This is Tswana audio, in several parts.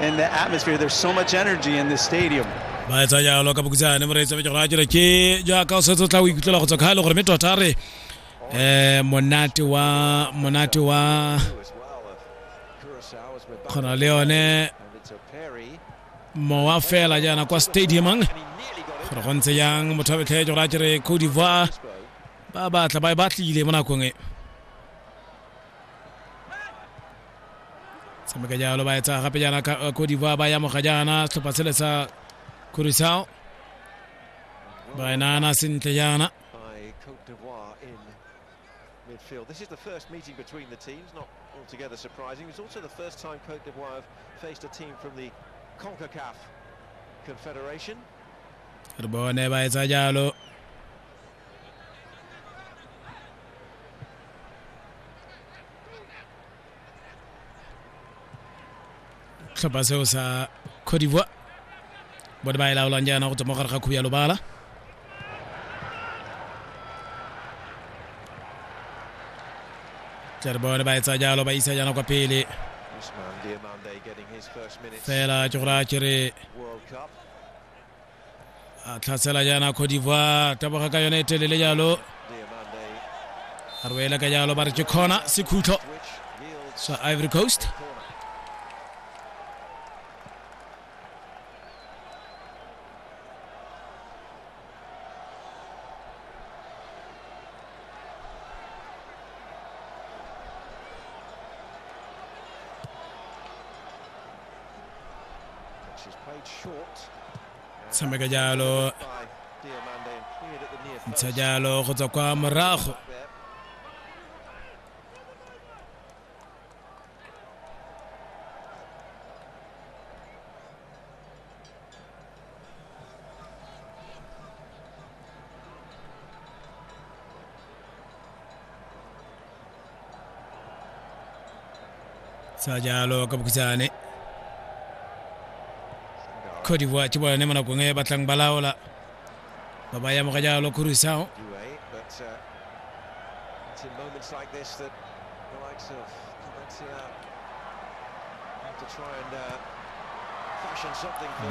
And the atmosphere, there's so much energy in this stadium. ba etsa jalo ka bokutsane moreetsa be ke gore a jere ke jaaka o setse o tla o ikutlwela go tswa ka gale gore mme tota re um monate wa monate wa kgona le yone mowa fela jaana kwa stadiumang gore go ntse jang motho a betlhee gore a jere cote divoir ba batla ba e batlile mo nakong e tshameka jalo ba etsa gape jaana cote d'ivoire ba yamoga jaana setlhopha sele sa curacao ba e naana sentle jaana midfield. This is the first meeting between the teams, not altogether surprising. It's also the first time Cote d'Ivoire have faced a team from the CONCACAF Confederation. re bone ba etsa jalo tlhopha seo sa cote d'ivoire bone ba e laolang jaana go tswa mo gare ga khubu ya lobala tlere bone ba etsa jalo ba isa jaana kwa pele fela ke gore a kere a tlhatsela jaana cote d'ivoire taboga ka yone e telele jalo a rwele ka jalo ba re ke kgona sekhutlo sa ivory coast tshameka jalo ntsha jalo go tswa kwa morago sa jalo ka bokhutshane cote divoire ke bone mo nakong e batlang ba laola ba ba yamoga jalo khurusao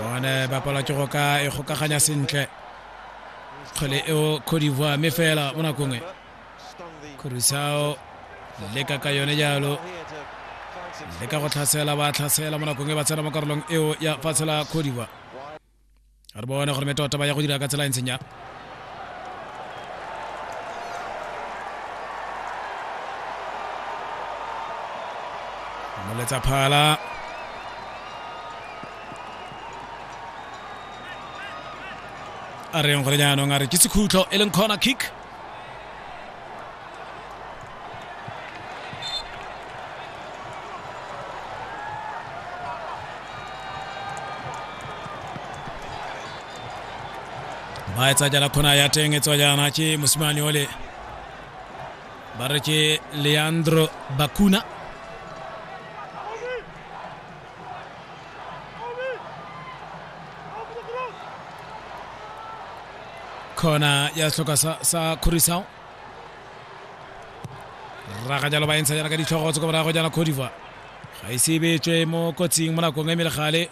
bone ba palwa ke go ka e kgokaganya sentle kgole eo cote divoire mme fela mo nakong e Kurisao leka ka yone jalo le ka go tlhasela ba tlhasela mo nakong e ba tsena mo karolong eo ya fatshe la khodiwa re bone gore metota ba ya go dira ka tsela e ntseng ya moletsa phala a reng gore jaanong a re ke sekhutlo e leng corner kick ba etsa jala khona ya teng e tswa jaana ke mosimane ole ba re ke leandro bakuna khona ya setlhoka sa, sa kgorisao raga jalo ba entsha jana ka ditlhogo tse ko morago jana cote d'ivoire ga e sebetswe mo kotsing mo nakong e mele gale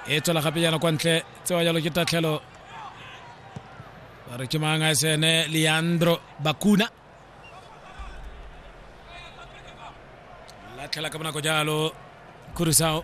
e tswela gape jana kwa ntle tsewa jalo ke tatlhelo ba re ke mang a sene leandro bakuna latlhela ka bonako jalo kurisao